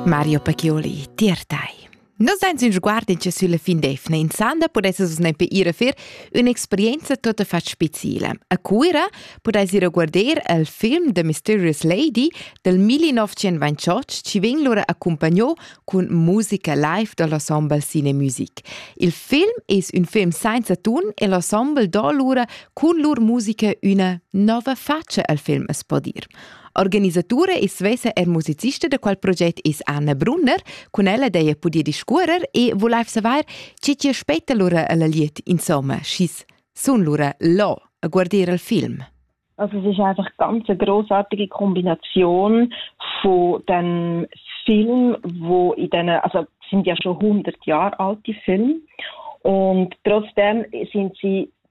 Mario Pacchioli, tier tai. Nus ein sin sguardin che sulla fin d'efna in sanda pudesses ne per ir a fer un'experienza totta fat speciale. A Cuira pudais ir a guardar il film The Mysterious Lady del 1928 ci vegn lura accompagnato con musica live dell'ensemble Cine Music. Il film es un film senza ton e l'ensemble do lura con lur musica una nova faccia al film es podir. Organisatura e svesa er musicista da quel proget is Anna Brunner, cun ella dei pudie discuorer e volaiv saver chi ti aspetta lura alla liet insomma, schis sun lura là a guardire il film. Also es ist einfach ganz eine großartige Kombination von dem Film, wo in diesen, also sind ja schon 100 Jahre alte Filme und trotzdem sind sie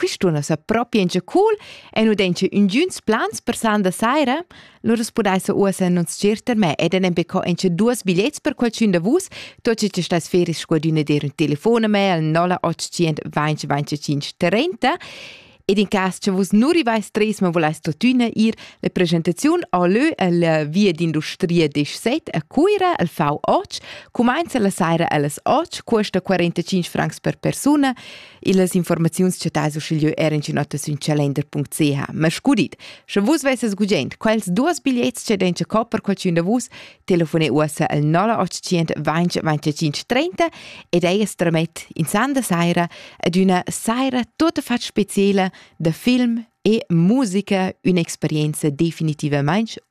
Quist'una sa propi encha cool e nu dencha üngüns plans per san da saira, lura pudais uossa non tscherter me ed enen be co encha duos bigliets per qualchün da vus, tot che stas fer sco adüna dir ün telefon a me al 0800 20 25 30 ed in cas che vus nu rivais tres ma volais tuttina ir, la presentaziun a lö alla via d'industria disch 7 a Cuira al V8 cumainza la saira allas 8, custa 45 francs per persuna, Illas informaziuns chattais uschigliö er in notta sün calender.ch. Ma scudit, sche vus vesses gugent quels duos bigliets che den co per qualchun da vus, telefone uossa al 0800 20 25 30 ed eias tramet in sanda saira ad üna saira tota fat speciela da film e musica, un'esperienza definitivamaing